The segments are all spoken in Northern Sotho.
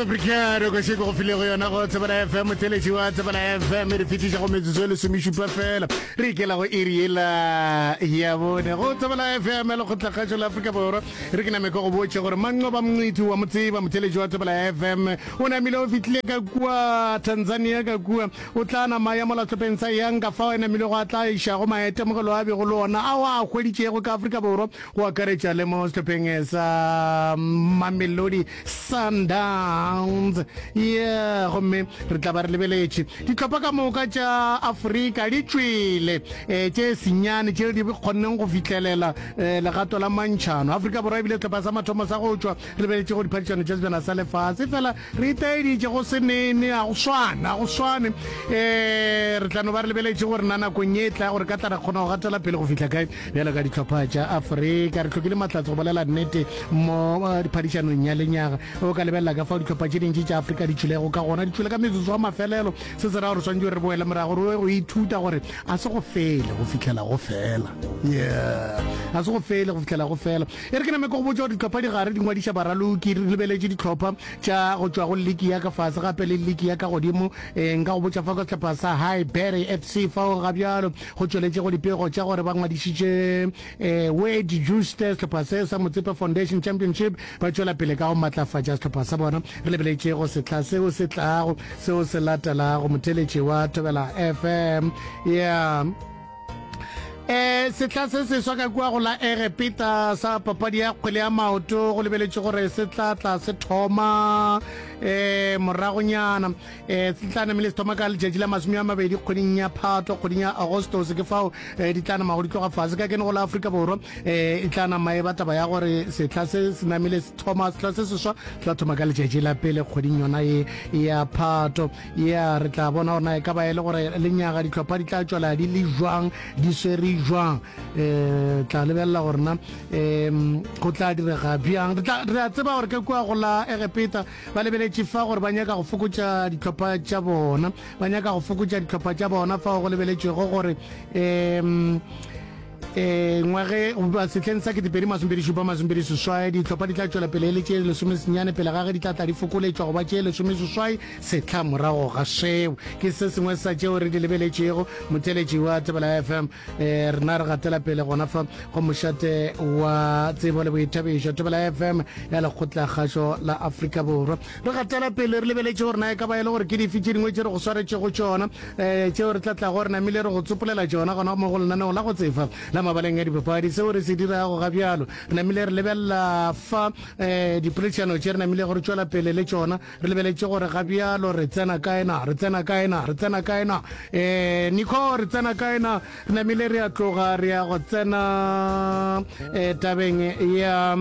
bricado ko sheko go filego yona go tsebana fm theletši wa tsebana fm re fetiša go metsotso e lesomešupa fela re ikela go iri ela ya bone go tsebana fm le kgotlakgatšo la afrika borwa re ke nameko go botše gore manqo ba mongwiti wa motseba motheletši wa tsebana fm o namile o fitlile ka kua tanzania ka kua o tla nama ya molatlhopeng sa yang ka fao e namile go a tla iša go maetemogelo a bego le ona a o a hweditšego ka afrika borwa go akaretša le mo sehlopheng sa Mamelodi Sundowns. Ye gomme re tla ba re lebeletše ditlhopha ka moka tša Afrika di tšwele um tše senyane tše di kgonneng go fihlelela um legato la mantšhano. Afrika Borwa ebile sehlopha sa mathomo sa go tšwa re beletše go diphadišano tša sejana sa lefase fela Re itaeditše go se nene, ga go swane, ga go swane. E, re tla no ba re lebeletše gore na nakong ye e tla gore ka tla ra kgona go gatela pele go fihla kae. Bjalo ka dihlopha tša Afrika, re hlokile mahlatse go bolela nnete mo eh, phadišanong ya lenyaga. O ka lebelela ka fao dihlopha tše dintši tša Afrika di tšwilego ka gona, di tšwile ka metsotso wa mafelelo. Se se ra gore swantse re boele morago, re go ithuta gore a se go fele go fihlela go fela. Yeah. A se go fele go fihlela go fela. E re ke name ke go botša gore ditlhopha di gare di ngwadiša baraloki, re lebeletše ditlhopha tša go tšwa go liki ya ka fase gape le liki ya ka godimo. E, nka go botša fa ka sehlopha sa Highbury FC fao ga bjalo go tšweletše go dipego tša gore ba ngwadišitše e, Wade Jooste sehlopha se sa Motsepe Foundation Championship ba tšwela pele ka go matlafatša sehlopha sa bona. Re lebeletše go sehla seo se tlago seo se latelago motheletši wa Thobela FM. Yeah. eh setla se seswa ka kua go la egepeta sa papadi ya kgwele ya maoto go lebeletše gore se tla tla se thoma eh moragonyana eh se tla namele se thoma ka letšatši la masome a mabedi kgweding ya phatlo kgweding ya agostos ke fao eh, di tla nama go di tloga fase ka kene go la aforika borwa eh e tla nama e ba taba ya gore setla se se namele se thoma setla se seswa se tla thoma ka letšatši la pele kgweding yona e ya phatlo Ya, re tla bona gore na e ka ba e le gore lenyaga ditlhopha di tla tšwela di le jwang di swere jwang um tla lebelela gore na um go tla direga bjang re a tseba gore ke kua go la egepeta ba lebeletše fa gore ba nyaka go fokotša ditlhopha tša bona ba nyaka go fokotša ditlhopha tša bona fa go lebeletšego gore um e ngwage goba setlheng sa ketepedi masompedi šupa masompedi seswai ditlhopha di tla tšwela pele e le tše lesome senyane pele gage di tla tla di fokoletšwa goba tše lesome seswai setlha morago ga seo ke se sengwe sa tšeo re di lebeletšego motheletši wa tebela fm eh, rena re gatela pele gona fa go mošate wa tsebo le boithabišo tebela fm ya lekgotlakgašo la afrika borwa Re gatela pele re lebeletše gore na e ka ba e le gore ke dife tše dingwe tše re go swaretšego tšona um tšeo re tla tlago re namile re go tsopolela tšona gona mo go lenaneo la go tsefa la mabaleng a dipapadi. Seo re se dirago ga bjalo re namile re lebelela fa um dipoledišano tše re namilego re tšwela pele le tšona re lebeletše gore ga bjalo re tsena kae na, re tsena kae na, re tsena kae na, um Nico re tsena kae na, re namile re a tloga re ya go tsena um tabeng ya.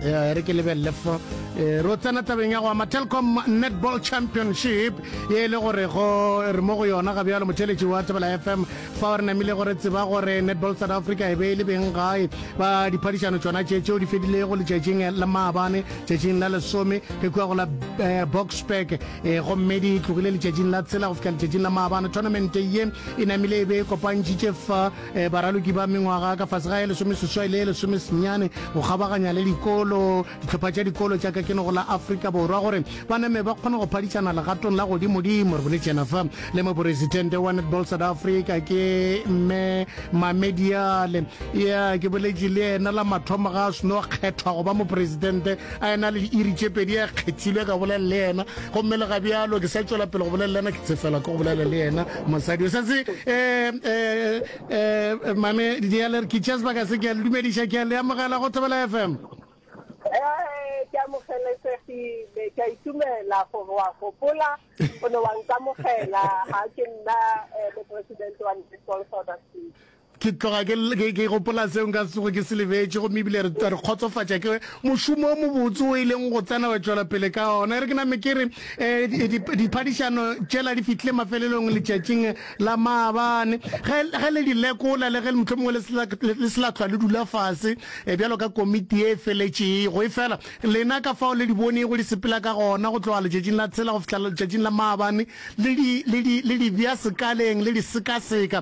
ya re ke lebelele fo eh, ro tsena tabeng ya go ama telcom netball championship ye e le gore go re mo go yona ga bjalo motheletši wa tebela fm fa o re namile gore tseba gore netball south africa e be e le beng gae ba diphadišano tsona tše tšeo di fedilego letšatšing la maabane tšatšing la lesome re kua go la eh, boxburg eh, gomme di tlogile letšatšing la tshela go fihla letšatšing la maabane tournamente ye e namile e be e kopantšhitše fa Baraloki ba mengwaga ka fase ga ye lesomeseswai le ye lesomesenyane go kgabaganya le dikolo, dihlopha tša dikolo tša Kakenoko la Afrika Borwa gore ba name ba kgone go phadišana legatong la godimodimo. Re boletše yena fa le moporesitente wa Netball South Africa ke Mme Mamediale. Ya ke boletše le yena la mathomo ga a seno kgethwa go ba moporesitente a ena le diiri tše pedi a kgethilwe ka bolela le yena gomme le ga bjalo ke sa tšwela pele go bolela le yena ke tsefela ke go bolela le yena. Mosadi o setse eh, eh, eh, mame dialer ke tšea sebaka se ke a le dumediša ke a le amogela go thobela fm Eh, ke amogelesegile ke a itumela gore wa gopola o ne wa nkamogela ga ke nna eh, moporesidente wa Netball South Africa Ke tloga ke, ke, ke gopola seo nka se tsoge ke se lebetše, gomme ebile re, re kgotsofatša ke mošomo o mobotse o e leng go tsena wa tšwela pele ka ona. E re ke name ke re, eh, di, di, diphadišano tšela di fihlile mafelelong letšatšing la maabane. Ge, ge le di lekola, le ge mohlomongwe le se la, le, le se la hlwa le dula fase, eh, bjalo ka komiti ye e feletšego, efela lena ka fao le di bonego di sepela ka gona, go tloga letšatšing la tshela go fihla letšatšing la maabane, le di, le di, le di bea sekaleng, le di sekaseka,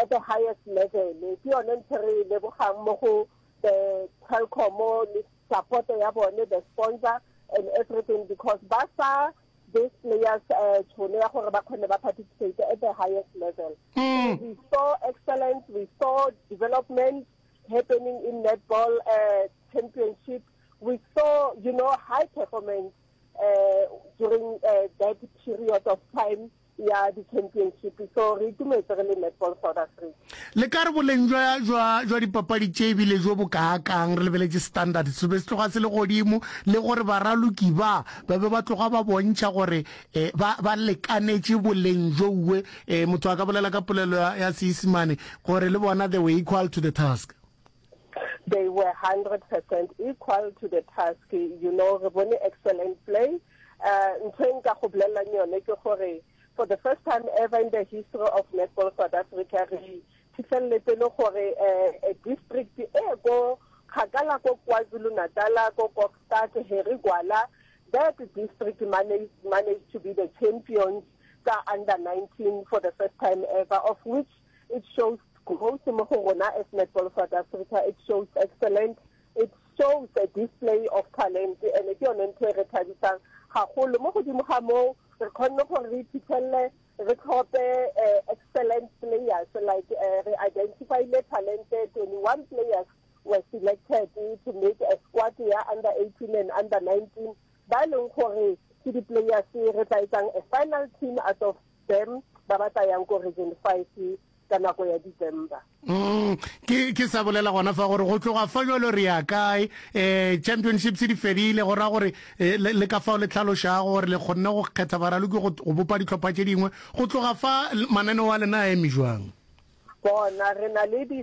at the highest level ke yone ntho re e lebogang mo go the telcom le support ya bone the sponsor and everything because ba sa these players uh, tšhono ya gore ba kgone ba participate at the highest level mm. we saw excellence we saw development happening in netball uh, championship we saw you know high performance uh, during uh, that period of time ya di-championship so re itumetse re le netball south africa le ka re boleng jwa dipapadi tše ebile jo bo kaakang re lebeletse standard se be se tloga se le godimo le gore baraloki ba ba be ba tloga ba bontšha gore eh, ba ba lekanetše boleng jouwe eh, motho a ka bolela ka polelo ya seisemane gore le bona they were equal to the task they were 100% equal to the task you know re bone excellent play uh, ntho e nka go bolelelang yone ke gore for the first time ever in the history of netball south africa re phitlheleletse le gore uh, a district e ko kgakala ko kwazulu natala ko kokstad heri gwala that district managed, managed to be the champions ka under 19 for the first time ever of which it shows growth mo go rona as netball south africa it shows excellent it shows a display of talent and ke yone ntho e re thabisang gagolo mo godimo ga moo re kgonne gore re iphitlhelele re tlhope eh, excellent players like eh, re identifile talent 21 players were selected to make a squad ya under 18 and under 19 ba e leng gore ke di-players re tla etsang a final team out of Bem, ba ba tsayang ko Region Five ka nako ya December. Mm, ke ke sa bolela gona fa gore go tloga fa jalo re ya kae eh championships di fedile go ra gore eh, le le ka fao le tlhalošago gore le kgonne go kgetha baraloki go go bopa ditlhopha tše dingwe go tloga fa l- mananeo a lena a eme jwang bona re na le di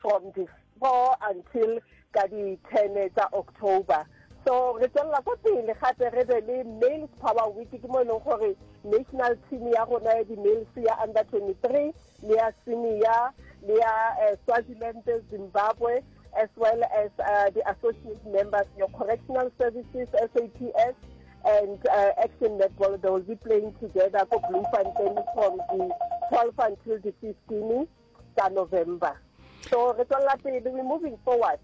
from di four until ka di ten tsa october so re tswelela ko pele gape re be le males power week ke mo e leng gore national team ya rona ya di-males ya under twenty three le ya senior le ya eh, swaziland zimbabwe as well as uh, the associate members your correctional services saps and uh, action netball they will be playing together ko bloemfontein from the twelve until the fifteen tsa November. So re tswalla pele, we moving forward.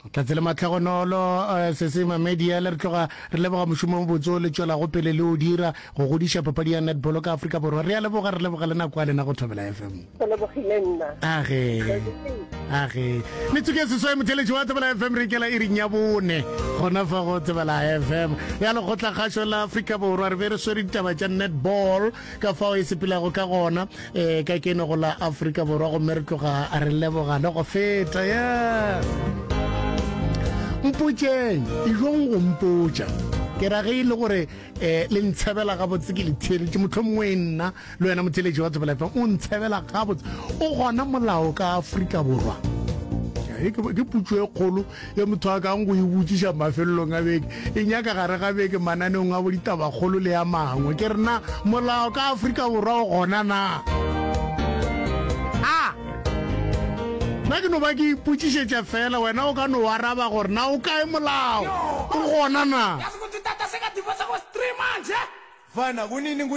tlhatse le matlhagonolo eh, se se mamedi ya le re tloga re leboga mošomo mo botso le tšwelago pele le o dira go godiša papadi ya netball ka afrika borwa re a leboga re leboga le nako ya lena go thobela fm age age metsoko ya seswae motheletši wa tsebela fm re kela e ring ya bone gona fa go tsebela fm ya lekgotlakgašo la afrika borwa re be re swere ditaba tša netball ka fao e sepelago ka gona um ka keno go la afrika borwa gomme re tloga re lebogane go feta ya mpotšeng ijong go mpotša ke ra ge e le gore um le ntshebela gabotse ke le theeletše motlho mongwe e nna le wena motheletši wa tsebelefa o ntshebela gabotse o gona molao ka afrika borwa ke putso e kgolo Ge motho a kang go e botšiša mafelelong a beke, e nyaka gare ga beke mananeong a boditabakgolo le a mangwe. Ke re, Na molao ka Afrika Borwa o gona na? A Na ke no ba ke ipotšišetša feela, wena o ka no o araba gore, Na o kae molao? O gona na?